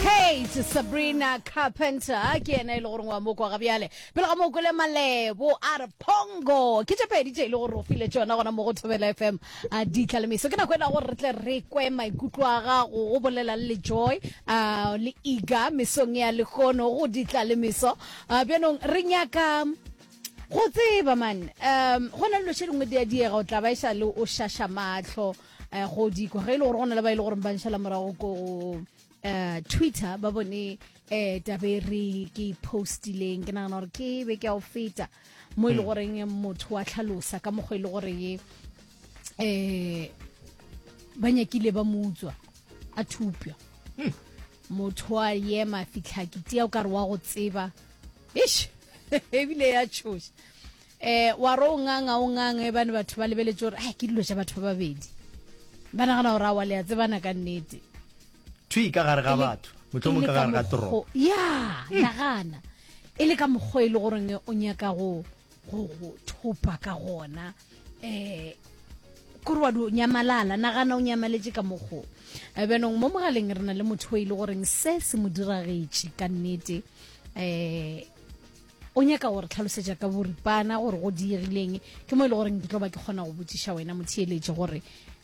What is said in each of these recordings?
Kate Sabrina Carpenter ke ena e le gore wa mo kwa ga bjale pele ga mo kwele malebo a re pongo ke tše pedi tše e le gore o file tšona gona mo go thobela fm a di tlalemiso ke nako e lago re tle re kwe maikutlo a gago go bolela le joy uh, le iga mesong ya lehono go di tlalemiso uh, bjanong re nyaka go tseba man um go na le loshe lengwe di a diega o tla ba e sa le o šaša matlho um go dikwa ge e le gore go na le ba e le gore ba nšhala morago ko um twitter ba bone um tabe re ke postileng ke nagana gore ke be ke a o feta mo e le hmm. goreng motho wa tlhalosa ka mokgwa e le gore ye um ba nyakile ba mo utswa a thupja hmm. motho a yema fitlhakiti ya o kare wa go tseba ish ebile ya tshoša Eh, wa ro ngang a o ngang e bane batho ba lebeletse gore ai ke dilo tša batho ba babedi ba nagana gore a wa le ya tsebana ka nnete thwi ka gare ga batho motlhomong ka gare ga toropo ya nagana e le ka mokgwa e le goreng o nyaka go go go thopa ka gona eh kore wa do nyamalala nagana o nyamaletse ka mokgo Eh, bjanong mo mogaleng re na le motho o e le goreng se se mo diragetše ka nnete eh o nyaka gore tlhalosetša ka boripana gore go diegileng ke mo e le goreng ke tlo ba ke kgona go botsiša wena motheeletše gore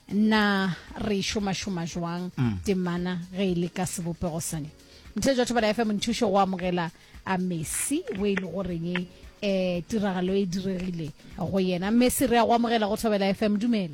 na re šomašoma jwang mm. temana ge e le ka sebopego sane mothe jwa thobala fm nthušo go amogela a messi o e le goreng um tiragalo e diregile go yena messi re ya go amogela go thobela fm dumela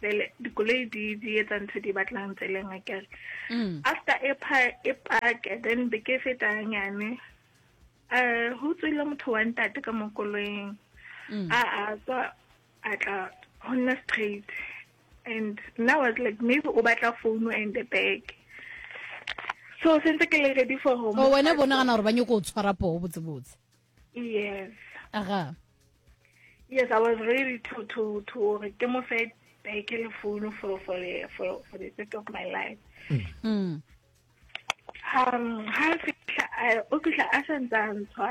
Bele, dikoloi di di etsa ntho di batlang tseleng a kere mm. after e pha e parke then be ke feta nyane eh ho tswile motho wa ntate ka mokoloing mm. a a tswa a tla honna straight and now was like maybe o batla phone and the bag so sentse ke le ready for home o oh, wena bona gana gore ba nyoko o tshwara poo botse botse yes aga yes i was ready to to to gore ke mo fe beke le founu for for for for the sake of my life mm. Mm. um ha fihla o fihla a sa ntsa ntshwa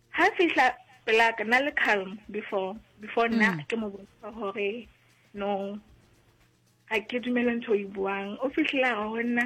ha fihla pela ka na le calm before before nna mm. ke mo botsa gore no ga ke dumele ntho e buang o fitlhela ga go nna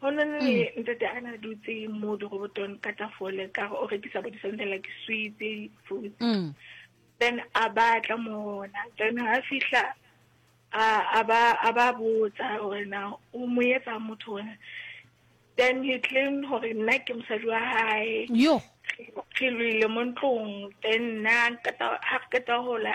go na le mm. ntate a na dutse mo dirobotong ka tafole ka o rekisa bo disonte like switse foods mm. then a batla mona then ha fihla a ba botsa gore na o mo etsa motho wena then he claimed gore nna ke mosadi wa gae re lwile mo ntlong then nna ga re keta gola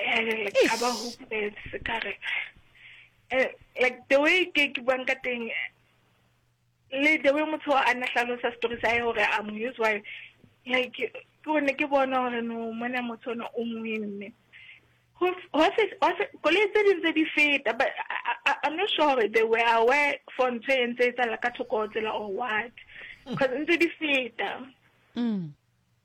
Eh, ka ba hopeletse ka re eh, like the way ke ke buang ka teng le the way motho a na hlalosa story sa hae gore a mo use why like ke gone ke bona gore no mona motho ona o ngwenne koloi tse ding tse di feta but i'm not sure gore they were aware for ntho e ntse e tsala ka thoko tsela or what because mm. ntse di feta mm.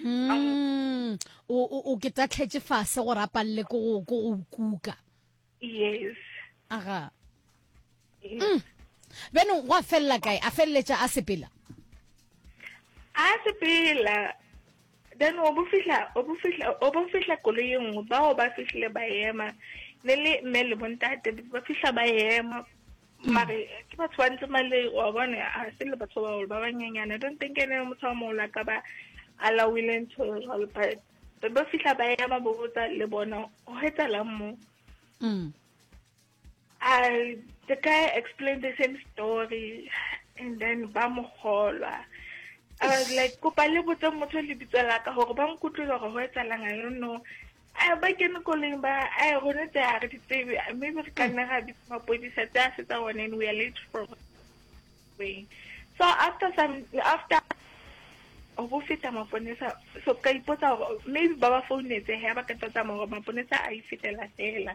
mm, o o o ke tatlhetse fase gore a palele ko go ko go kuka yes aga yes. mm. benong go a felela kae a feleletša a sepela a sepela then o bofihla o bofihla o bofihla koloi e nngwe bao ba fihlile ba ema ne le mme le bontate ba fihla ba ema mare ke batho ba ntse male wa bone a se le batho ba ba banyenyane i don't think ene motho wa mola ka ba allowile ntho e jalo but be ba fihla ba ya ba botsa le bona go etsalang mo mm. I, the guy explained the same story and then ba mo golwa I was like kopa le botse motho le bitsa la ka gore ba nkutlwile gore go etsalang i don't know A ba kene koleng ba a gona tse a re di tsebe maybe re ka nna ga bitsa mapodisa tse a fetsa one and we are late for way so after some after go bo feta maponesa so ka ipotsa gore maybe ba ba founetse he ba ka tsa tsamaya gore maponesa a e fetela fela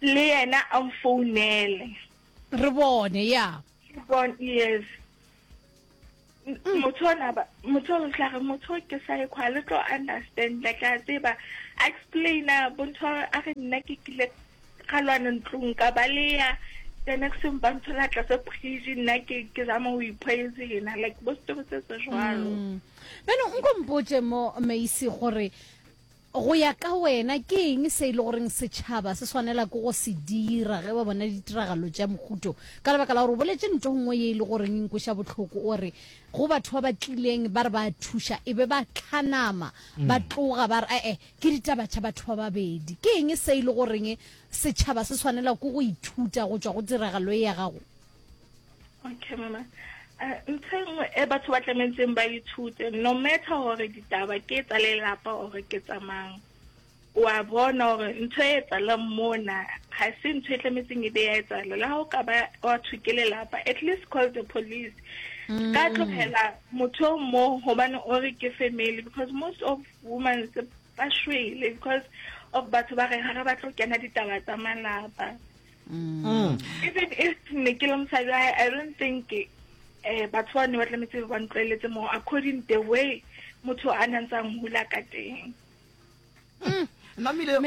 le yena a mfounele re bone ya bon yes motho ona ba motho o tla re motho ke sa ikwa le tlo understand la tla tseba explaina bontho a re nna ke kile ga lwana ntlong ka ba le ya the next time ba nthola tla se phiji nna ke ke za mo ipoise yena like bo story se se jwalo mm. beno nko mpotse mo meisi gore Go ya ka wena, ke eng se e le goreng setšhaba se swanela ke go se dira ge ba bona ditiragalo tša mohuto? Ka lebaka la gore o boletše nto nngwe ye e le goreng e nkweša bohloko, o re go batho ba ba tlileng ba re ba a thuša e be ba hlanama ba tloga ba re ee ke ditaba tša batho ba babedi. Ke eng se e le goreng setšhaba se swanela ke go ithuta go tšwa go tiragalo ye ya gago? okay mama eh, ntho e nngwe e batho ba tlametseng ba ithute no matter gore ditaba ke tsa lelapa gore ke tsamang wa bona gore ntho e etsalang mona ga se ntho e tlametseng e be ya etsala la go ka ba wa thuke lelapa at least call the police mm. ka tlogela motho o mo gobane o re ke family because most of women ba shwele because of batho ba re ga ba tlo kena ditaba tsa malapa Mm. even if ne ke le mosadi i don't think um batho ba ne ba tlametse ba ntlwaeletse mo according the way motho a ne ntsang hula ka teng mm. namile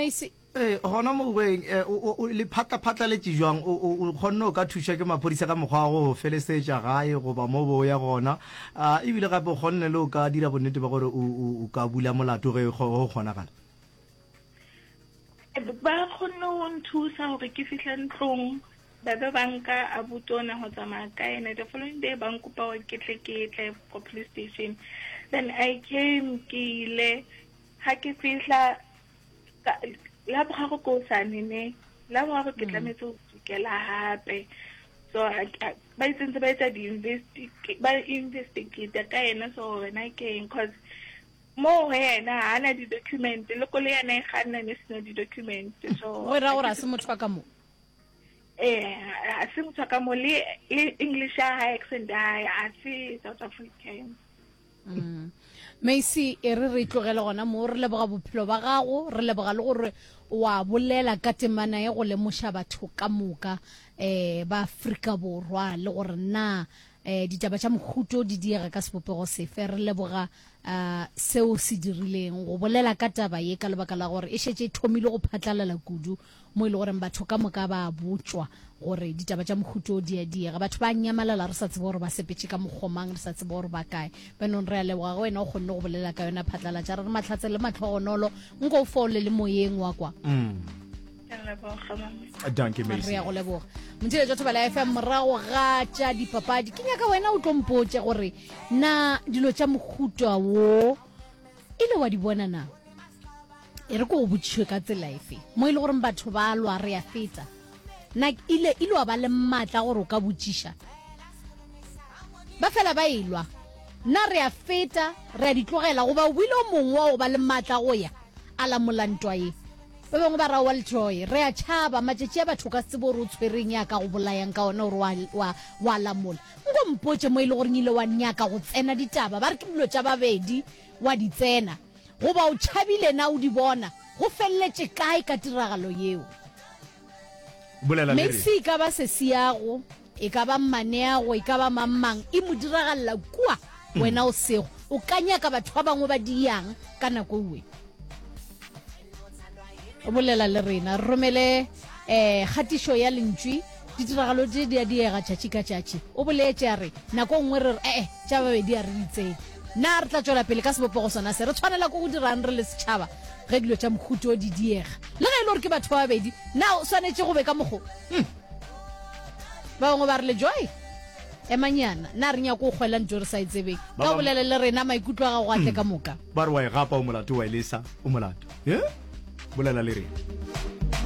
ee gona mo boeng eh, le phatlaphatlaletše jwang o kgonne o ka thuša ke maphodisa ka mokgwa wa go felesetša gae goba mo bo ya gona ah, ebile gape o kgonne le o ka dira bonnete ba gore o ka bula molato ge go kgonagala ba kgonne go nthusa gore ke fihle ntlong ba be ba nka abuti o ne go tsamaya ka ene the following day ba nkopa gore ke tle ke tle ko police station then i came ke ile ga ke fihla la bogago ko sane ne la bogago ke mm. tlametse go tsukela gape so ba itsentse ba etsa di-investigate ka ene so wena ke eng cause Mo go yena ha na di document le ko le yena e ganna ne sena di document so go ra gore a se motho ka mo eh a se motho ka mo le English ya hae accent ya hae a se South African Mm. Macy e re re tlogele gona mo re leboga bophelo ba gago re leboga le gore wa bolela ka temana e go lemoša batho ka moka eh ba Afrika Borwa le gore na Eh, ditaba tša mohuto di diega ka sebopego sefe re leboga uh, seo se dirileng go bolela ka taba ye ka lebaka la gore e šetse e thomile go phatlalala kudu mo e le goreng batho ka moka ba botswa gore ditaba tša mohuto di a diega batho ba nyamalala re sa tsebe gore ba sepetse ka mokgomang re sa tsebe gore ba kae benong re a leboga go wena o kgonne go bolela ka yona phatlalatša re re matlhatse le matlhogonolo nko o foole le moyeng wa kwa mm. danke re ya go leboga motheletša thoba la fm morago ga tša dipapadi ke nyaka wena o tlompotše gore na dilo tša mohuta wo e le wa di bona na e re ko go botšišwe ka tsela efe mo e le goreng batho ba lwa re ya feta na ile ile wa ba le maatla gore o ka botšiša ba fela ba elwa na re a feta re a ditlogela goba o bile o mongwe wa go ba le maatla go ya a lamola ntwa ye Ba bangwe ba ra wa lejoy. Re a tšhaba. Matšatši a batho o ka se tsebe gore o tshwereng ya ka go bolayang ka ona gore wa, wa, wa lamola. Nko mpotše mo e le goreng ile wa nyaka go tsena ditaba, ba re ke dilo tša babedi, wa di tsena. Goba o tšhabile na o di bona? Go feleletše kae ka tiragalo yeo? Bolela le re. Maxi e ka ba sesi ya go. e ka ba mmaneago e ka ba mangmang e mo diragalela kua mm. wena o sego o ka nyaka batho ba bangwe ba diyang ka nako uwe o bolela le rena romele eh gatišo ya lentswi ditiragalo di di a diega tšatši ka tšatši o boletse a re nako e nngwe re re ee tša babedi a re ditseng na re tla tswela pele ka sebopego sona se re tshwanela ko go dirang re le setšhaba ge dilo tša mokhuto di diega le ge e le gore ke batho ba babedi na o swanetše go be ka mokgo hmm. ba bangwe ba re le joy emanyana na re nyako o kgwela nto re sa e tsebeng ka o bolele le rena maikutlo a gago a tle hmm. ka moka ba re wa e gapa o molato wa e lesa o molato e bolela le rena